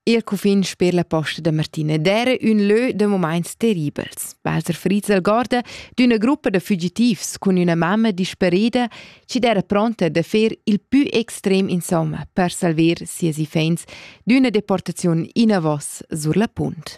Il cufin sper la posta da Martina d'era ün lö da momaints terribels. Walter Frizel guarda d'üna gruppa da fugitivs cun üna mamma disparida chi d'era pronta da fer il pü extrem insomma per salver sias iffaints d'üna deportaziun inavos sur la punt.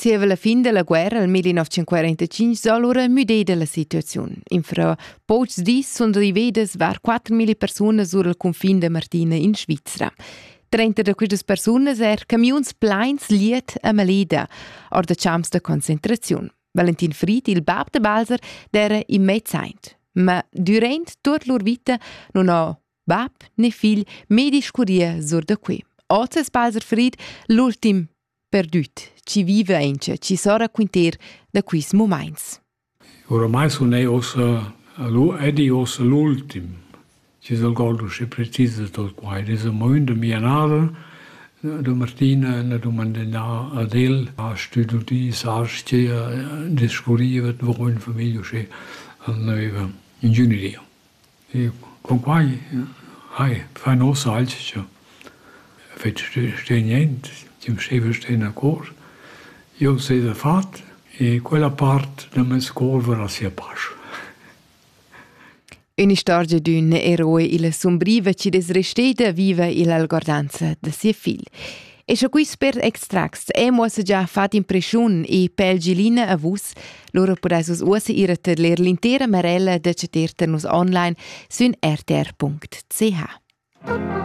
Zieva la fin dalla guerra nel 1945 s'ha lura müdeda la situaziun. Infra pochs dis sun rivedas var 4.000 persunas sur il cunfin da Martina in Svizra. Trenta da questas persunas er camiuns pleins liet a Maleda, or da champs da concentraziun. Valentin Fried, il bab da Balser, era immediat. Ma durant tut lur vita non ho bab né figl mai discurria sur da qui. Oz es Balser Fried l'ultim Perdüt, chi viva aint, chi s'ho raquinter da quists mumaints. Oramai sun ei ossa ed ei ossa l'ultim chi s'algordo sche precisa tot quai. Ed es amo ün da mia nada, da Martina, na dumandà ad el, ha stüdudi sar-schia, discurriva davo ün famiglia usché al növa, ingegneria. Eu cunquai hai fà ün hoz alch cha fetsch ste niente, chi'm staiva sten a cor. Eu s'ha fat e quella part da meis cor varà sia pasch. Ün'istorgia d'ün eroe illa sumbriva chi'd es resteda viva illa algordanza da sia figl. E sche quei spert extracts e muossa già fat impression e pel Gilina a vus, lura pudais vus uossa ir a tedler l'intera marella da ceter nus online sün rtr.ch.